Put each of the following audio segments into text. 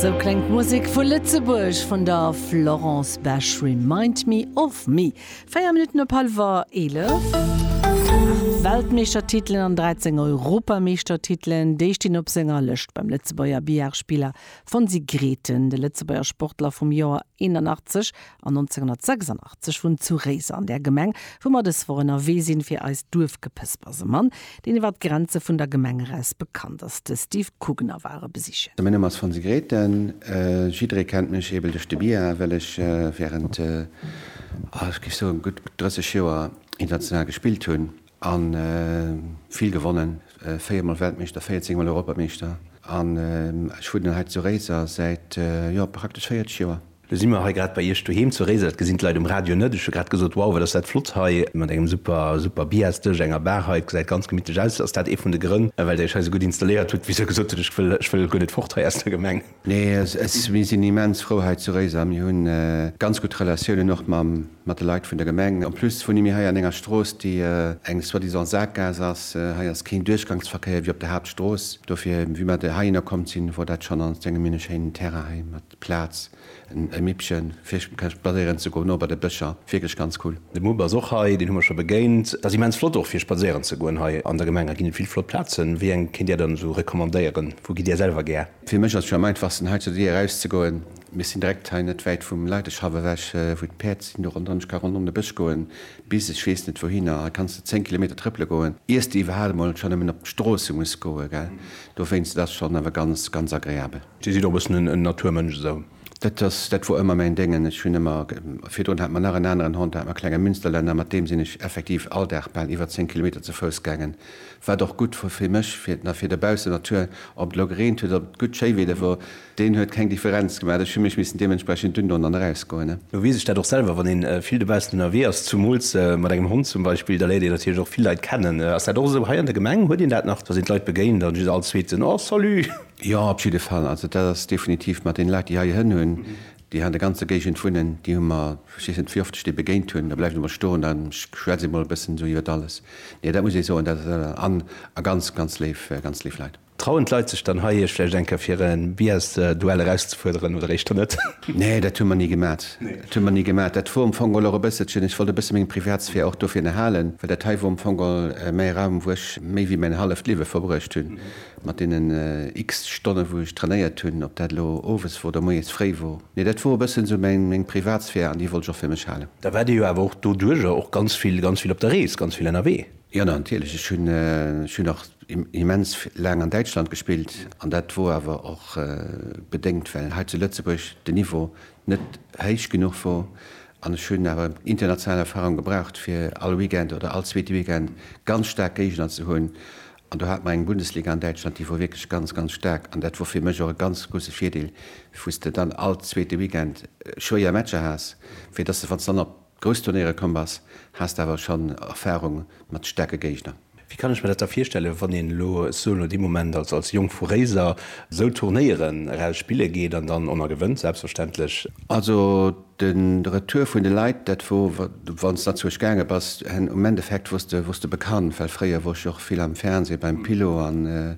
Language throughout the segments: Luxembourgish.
Sou kléngt d'Musek vu Lëtzebuerg vun der Florence Besch, Remind me of me. Véier Minutten op hallwer eelef. Aacht Weltmeeschtertitelen an 13 Europameeschtertitelen, déi stinn op senger Lëscht beim Lëtzebuerger Billard-Spiller Fonsi Grethen. De Lëtzebuerger Sportler vum Joer 81 An 1986 vun zu Réiser an där Gemeng, wou mer dës Woch ënnerwee sinn, fir eist Duerfgepëspers e Mann, deen iwwer d'Grenze vun der Gemeng eraus bekannt ass, de Steve Kugener, war e besichen. Mäin Numm ass Fonsi Grethen. Jidderee kennt mech eebel duerch de Billard, well ech wärend, ah, ech géif soen, gutt 30 Joer international gespillt hunn. A vill gewonnen, 4 mol Weltmeeschter, 14 mol Europameeschter. An ech wunnen dann hei zu Réiser säit, jo, praktesch 40 Joer. Lo si mer hei grad bei Iech doheem zu Réiser. Dat gesinn d'Leit um Radio net. Ech hu grad gesot, wow, wat ass dat flott hei mat engem super, super Biasdësch, enger Bar hei. Et gesäit ganz gemittlech aus. Ass dat ee vun de Grënn, well Der Iech hei esou gutt installéiert hutt? Wéi ech esou gesot hunn, ech wëll, ech wëll guer net fort hei aus der Gemeng. Nee, mir sinn immens frou hei zu Réiser a mir hu ganz gutt Relatiounen och mat de Leit vun der Gemeng. En plus wunne mir hei an enger Strooss, déi eng soi-disant Sakgaass ass. Hei ass keen Duerchgangsverkéier wéi op der Haaptstrooss. Dofir, wéi mer hei hinner komm sinn, wor dat schonn, an ech denke mir hunn e schéinen Terrain hei mat Plaz, e Mippchen fir spadséieren ze goen, och bei de Bëscher, wierklech ganz cool. De Mupp ass och hei, deen hu mer scho begéint. Dat ass immens flott och fir spadséieren ze goen hei an der Gemeng. Hei ginn et vill flott Plazen. Wéi eng kéint Dir dann esou recommandéieren? Wou gitt Dir selwer gär? Fir mech ass et jo am einfachsten hei zur Dier eraus ze goen. Mir sinn direkt hei net wäit vum Leideschaff ewech wou d'Päerd sinn. Do ronderëm, ech ka ronderëm de Bësch goen bis ech weess net wouhinner. Hei kanns de 10 Kilometer trëppele goen iers de iwwerhal emol scho nëmmen op d'Stroosse muss goen, gell. Dowéinst et ass schonn awer ganz, ganz agreabel. Dir sidd och e bëssen en Naturmënsch esou? Dat ass, dat wor ëmmer mäin Déngen. Ech hunn ëmmer, virdrun hat mer nach en aneren Hond, da hat mer e klenge Münsterlänner, mat deem sinn ech effektiv all Dag bal iwwer 10 Kilometer ze Fouss gaangen Wat och gutt wor fir mech, fir na fir dobaussen Natur, ob et elo gereent huet, ob et gutt Schéiwieder wor, deen huet keng Differenz gemaat. Ech hu mech missen dementsprechend dünn doen an erausgoen. Lo weess ech dat och selwer, wann een vill dobaussen ënnerwee ass, zumools mat engem Hond zum Beispill, da léiert een natierlech och vill Leit kennen. Ass dat och esou hei an der Gemeng? Huet een dat nach, dass een d'Leit begéint an just all zweeten, Oh salut! Jo, op jidde Fall. Also dat ass definitiv mat den Leit, déi hei Hënn hunn, Déi han de ganze Géigend wunnen, déi hu mer, ech weess net wéi oft ech déi begéint hun, da bleiwen se mol stoen an ech schwätze mol e bëssen esou iwwert alles. Nee, dat muss ee soen, dat an a ganz, ganz léif, ganz léif Leit. Trauen d'Leit sech dann hei, iech vläicht eng Kéier fir e Bears-Duell erauszefuerderen oder éischter net? Nee, dat hu mer ni gemat, dat hu mer ni gemat. Dat wor am Fong och e bësselchen, ech wollt e bësse meng Privatsphär och dofir erhalen, well dat hei wor am Fong méi e Raum, wou ech méi wéi mäin halleft Liewe verbruecht hun. Mat deenen x-te Stonne wou ech trainéiert hunn, ob dat elo owes wor oder moies fréi wor, mee dat wor e bëssen esou meng Privatsphär an déi wollt ech och fir mech halen. Da waart Dir jo awer och doduerjer och ganz vill, ganz vill op der Rees, ganz vill ënnerwee? Jo natierlech, ech hunn, ech hunn och immens laang an Däitschland gespillt an dat wor awer och bedéngt well hei zu Lëtzebuerg den Niveau net héich genuch wor an ech hunn awer international Erfahrung gebraucht fir all Weekend oder all zweete Weekend ganz staark Géigner ze hunn An do hat mer eng Bundesliga an Däitschland, déi wor wierklech ganz, ganz staark. An dat wor fir mech och e ganz grousse Virdeel, wou s de dann all zweete Weekend schwéier Matcher has, fir dass de, wann s de dann op grouss Turnéiere komm bass, has de awer schonn Erfarung mat staarke Géigner. Wéi kann ech mer dat da virstellen, wann een elo sou no deem Moment als als Jong vu Réiser sou Turnéieren eraus spille geet an dann en a gewënnt, selbstverständlech? Also De Retour vun de Leit, dat wor, wann s de nach zu Esch gaange bass, hen um Endeffekt wors de, wors de bekannt, well fréier wor ech jo och vill am Fernseh beim Pilo an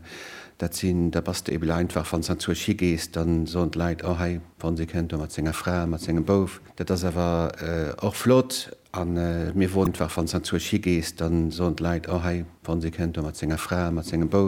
dat sinn, da bass de eben einfach, wann s de nach zu Esch higees, da soen d'Leit, oh hei, wann si kënnt do mat senger Fra, mat sengem Bouf. Dat ass awer och flott an mir woren, einfach wann s de nach zu Esch higees, da soen d'Leit, oh hei, wann si kënnt do mat senger Fra, mat sengem Bouf.